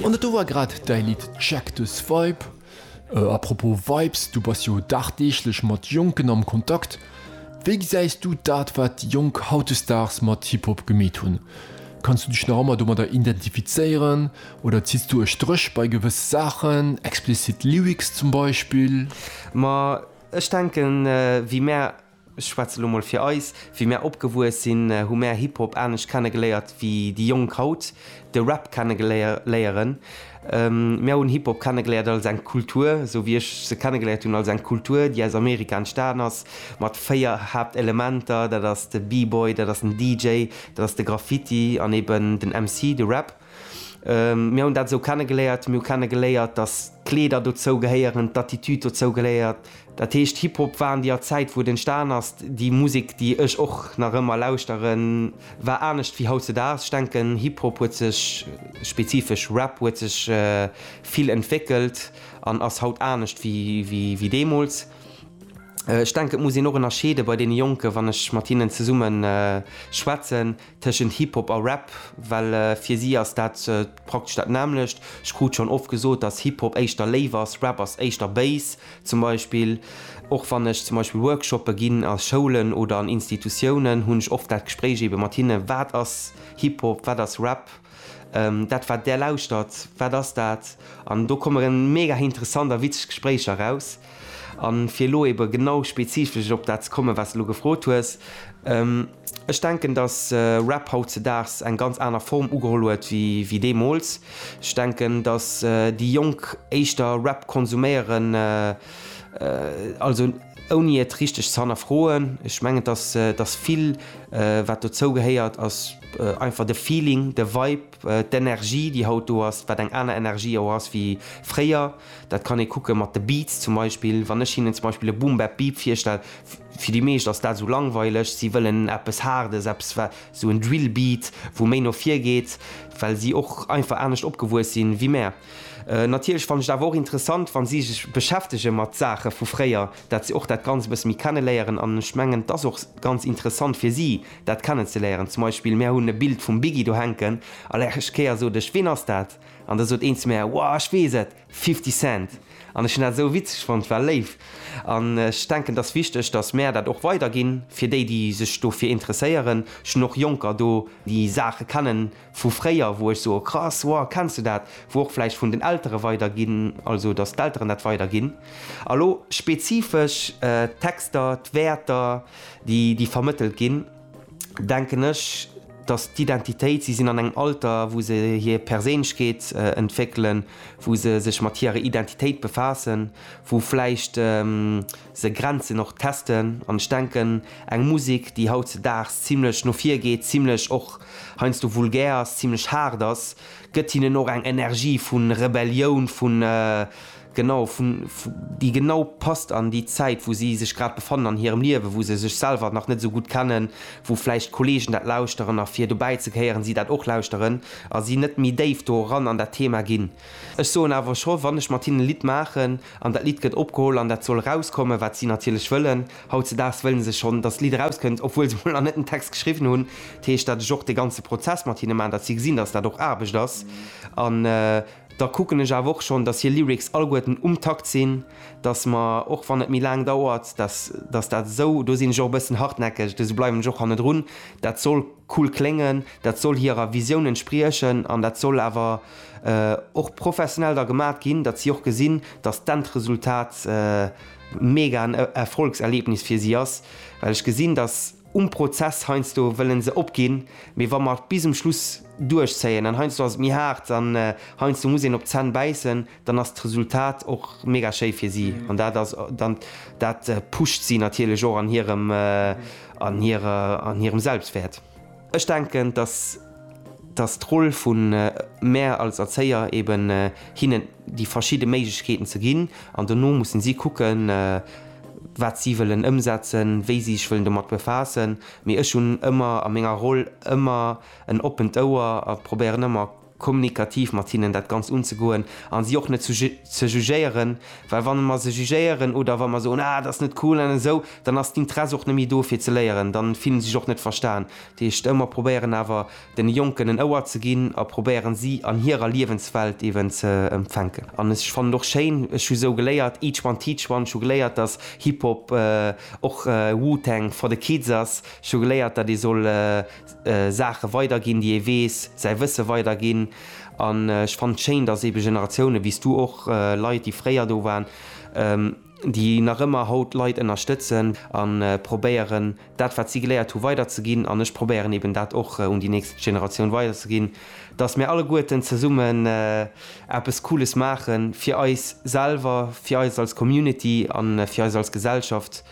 An dat do war grad däi Lidd Check This Vibe. A propos Vibes, du bass jo dagdeeglech mat Jonken am Kontakt. Wéi gesäis du dat wat déi Jonk hautdesdaags mat Hip-Hop gemeet hunn? Kanns du dech nach ëmmer domadder identifizéieren oder zitts du e Stréch bei gewësse Saachen, explicit Lyrics zum Beispill? Ma ech denken, wéi mär Ech schwätze lo mol fir eis, wéi mär opgewuess sinn, hu mär Hip-Hop anescht kenne geléiert wéi déi Jonk haut de Rap kenne léieren. Mär hunn Hip-Hop kenne geléiert als eng Kultur, esou wéi ech se kenne geléiert hunn, als eng Kultur, déi aus Amerika entstanen ass, mat véier Haaptelementer, dat ass de B-Boy, dat ass den DJ, dat ass de Graffiti an eben den MC, de Rap. Mir hunn dat esou kennegeléiert. Mir hu kennegeléiert, datt d'Kleeder dozou gehéieren, d'Attitude dozou gehéiert. Dat heescht, Hip-Hop war an deeër Zäit, wou et entstan ass, déi Musek, déi ech och nach ëmmer lauschteren, war anescht wéi hautzedaags. Ech denken, Hip-Hop huet sech, spezifesch Rap huet sech vill entwéckelt an ass haut anescht wéi deemools. Ech denken, et muss een och ënnerscheede bei deene Jonken, wann ech mat hinnen zesumme schwätzen, Tëschent Hip-Hop a Rap, well fir si ass dat praktesch dat nämmlecht. Ech krut schonn oft gesot, dass Hip-Hop éischter léif ass, Rap ass éischter béis. Zum Beispill, och wann ech zum Beispill Workshoppe ginn a Schoulen oder an Institutiounen, hunn ech oft dat Gespréich eebe mat hinne, Wat ass Hip-Hop, wat ass Rap? Dat wat där lauschtert, wat ass dat? An do komme reng mega interessant a witzeg Gespréicher eraus. A fir elo ebe genau spezifesch op dat ze kommen, wat s de elo gefrot hues, Ech denken, datt Rap hautzedaags eng ganz aner Form ugeholl huet wéi deemools. Ech denken, datt déi Jonk éischter Rap konsuméieren, also. Ouni et richteg ze hannerfroen. Ech mengen, dass dass vill wat dozou gehéiert ass einfach de Feeling, de Vibe, d'Energie déi haut do ass, wat eng aner Energie och ass wéi fréier. Dat kann ee kucke mat de Beats zum Beispill. Wann ech hinnen zum Beispill e Boom Bap Beep virstell, fir déi meescht ass dat esou langweileg. Si wëllen eppes Haardes, eppes wat esou en Drill Beat wou méi no vir geet, well si och einfach anescht opgewuess si wéi mär. Natierlech fannen ech et awer och interessant, wa si sech beschäftege mat Saache vu fréier, dat se och dat Ganzt e bësse méi kenneléieren. An ech mengen, et ass och ganz interessant fir si, dat kennenzeléieren. Zum Beispill, mär hunn e Bild vum Biggie do hänken, a lech Kéier sot ech, Ween ass dat? An da sot een zu mär, Wow, ech weess et, Fifty Cent! An ech hunn dat esou witzeg fonnt, war léif. An ech denken, et ass wichteg, datt mär dat och weiderginn, fir déi, déi sech dofir interesséieren. Ech hunn och Jonker do, déi Saache kennen. vu fréier, wou ech soe krass, wow, kenns de dat, wou och vläicht vun den Eltere weiderginn, also datt d'Elteren dat weiderginn a lo spezifesch d'Texter, d'Wäerter, déi déi vermëttelt ginn, denken ech, datt d'Identitéit, si sinn an engem Alter, wou se hir Perséinlechkeet entwéckelen, wou se sech mat hirer Identitéit befaassen, wou vläicht. Se grenzen och d'Testen an ech denken, eng Musek, déi hautzedaags zimlech no vir geet, zimlech och heiansdo vulgär ass, zimlech haart ass, gëtt hinnen och eng Energie vu Rebellioun, vu, genau, vu, déi genau passt an déi Zäit, wou si sech grad befannen an hirem Liewen, wou se sech selwer nach net esou gutt kennen, wou vläicht Kolleegen dat lauschteren a fir dobäi ze gehéieren, si dat och lauschteren a si net méi déif do eran an dat Thema ginn. Ech soen awer scho, wann ech mat hinnen e Lidd maachen an dat Lidd gëtt opgeholl an dat soll erauskommen, wat si natierlech wëllen, hautzedaags wëlle se schonn, dass d'Lidd erauskënnt, obwuel se mol nach net den Text geschriwwen hunn, dat heescht, dat ech och de ganze Prozess mat hinne maachen, dass si gesinn, dass dat och Aarbecht ass an da kucken ech awer och schonn, dass hir Lyrics alleguerten um Takt sinn, dass mer, och wann et méi laang dauert, dass dass dat esou, do sinn ech och e bëssen hartnäckeg, esou bleiwen ech och hannedrun, dat soll cool kléngen, dat soll hirer Visioun entspriechen an dat soll awer. och professionell da gemat ginn, datt si och gesinn, datt d'Endresultat mega en Erfolgserlebnis fir si ass, well ech gesinn, datt um Prozess heiansdo wëlle se opginn, mee wa mer et bis um Schluss duerchzéien, an heiansdo ass et méi haart an heiansdo muss een op d'Zänn bäissen, dann ass d'Resultat och mega schéi fir si an dat ass dann, dat pusht si natierlech och an hirem, an hirem Selbstwäert. Ech denken, dass dass d'Roll vu mär als Erzéier eben hinnen déi verschidde Méiglechkeeten ze ginn an dono mussen si kucken, wat si wëllen ëmsetzen, wéi si sech wëllen domat befaassen. Mee ech hunn ëmmer a menger Roll ëmmer en oppent Ouer a probéieren ëmmer, kommunikativ mat hinnen dat Ganzt unzegoen a si och net zu ze jugéieren, well wann mer se jugéieren oder wa mer soen, ah dat ass net cool an esou, dann ass d'Interesse och net méi do fir ze léieren, dann fillen se sech och net verstan. Dat heescht, ëmmer probéieren awer den Jonken en Ouer ze ginn a probéieren si an hirer Liewenswelt eeben ze empfänken. An ech fannen och schéin, ech hu sou geléiert, each one teach one, ech hu geléiert dass Hip-Hop och Wu-Tang for the kids ass, ech hu geléiert dat ee soll Saache weiderginn, déi ee weess, säi Wësse weiderginn. An ech fannen et schéin, datt eebe Generatiounen, wéi s du och, Leit, déi fréier do waren, déi nach ëmmer haut Leit ënnerstëtzen a probéieren, dat, wat si geléiert hu weiderzeginn, an ech probéieren eeben dat och un déi nächst Generatioun weiderzeginn, datt mir alleguerten zesummen eppes Cooles maachen, fir eis selwer, fir eis als Community a fir eis als Gesellschaft.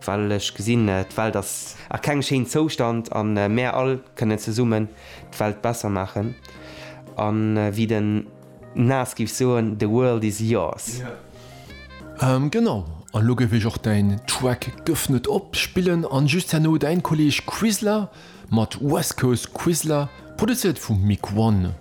Well ech gesinn, d'Welt ass a kengem schéinen Zoustand a mär all kënnen zesummen d'Welt besser maachen. A wéi den Nas géif soen, The world is yours. Genau, an elo géif ech och däin Track Gëff net op spillen an just herno däin Kolleg Quisla mat West Coast Quisla, produzéiert vum Mick One.